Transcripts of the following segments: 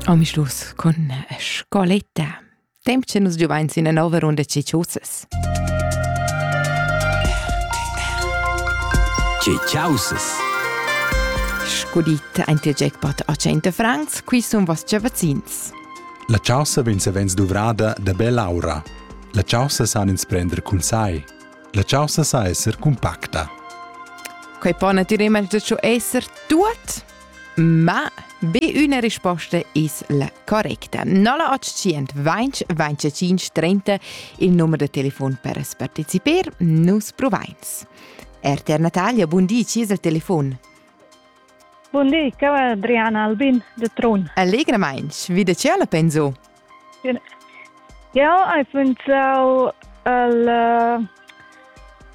Ami Schluss con scoletta. Temp che nus giuvain sin una nova runda Ciciusas. Ciciusas. Scudit ein dir jackpot a 100 francs, qui sun vostre vaccins. La chaussa vegn savens duvrada da bell'aura. La chaussa san ins prender cun sai. La chaussa sa esser compacta. Quei po naturalmente schon esser tut? Ma be üna risposta es la correcta. 0800 20 25 30 il numer de telefon per partecipar. Nus provains. RTR Natalia, bun di, ci es il telefon? Bun di, che va Adriana Albin de Trun. Allegramainch, vide ce alla penso? Jau hai pensau al uh,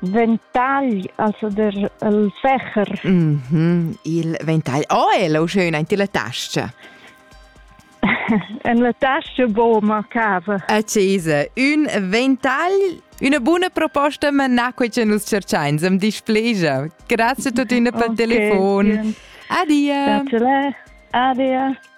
ventagl, also der, il fecher. Mm -hmm. Il ventagl. Oh, è lo schön in la tasca. en la tasca bo mancava. Accesa, un ventagl, una buona proposta, ma na quei che nus cercain, sem displegia. Grazie a tutti per okay, telefon. Adia. Grazie. Adia.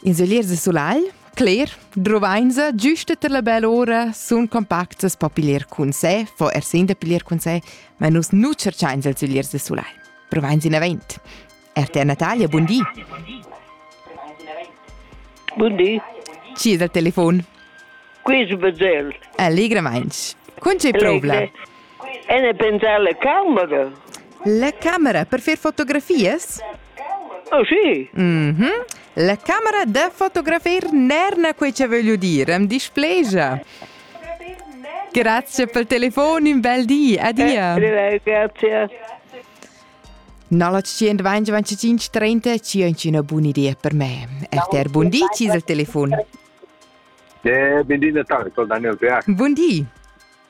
In seglier de sulagl, cler, druvainsa, giusta ter la bella ora, sun compactas po piglier cun sé, fo er sin da piglier cun sé, ma nus nu cerchains als segliers de sulagl. Provains in avent. Er te Natalia, bun di. Bun di. Ci è dal telefon? Qui su Bezell. Allegramainch. Con c'è problem? En e pensar la camera. La camera per fer fotografias? Oh sì. Mm -hmm. La camera da fotografar n'erna quei che voglio dire, am displegia. Grazie per il telefono, un bel dì, adia. Eh, grazie. 0925 buona idea per me. RTR Bundi, ci il telefono. Eh, buon dì Natale, con Daniel Peac. Buon dì.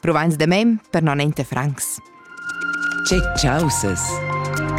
Provains da mem per non ente francs. Che chausas!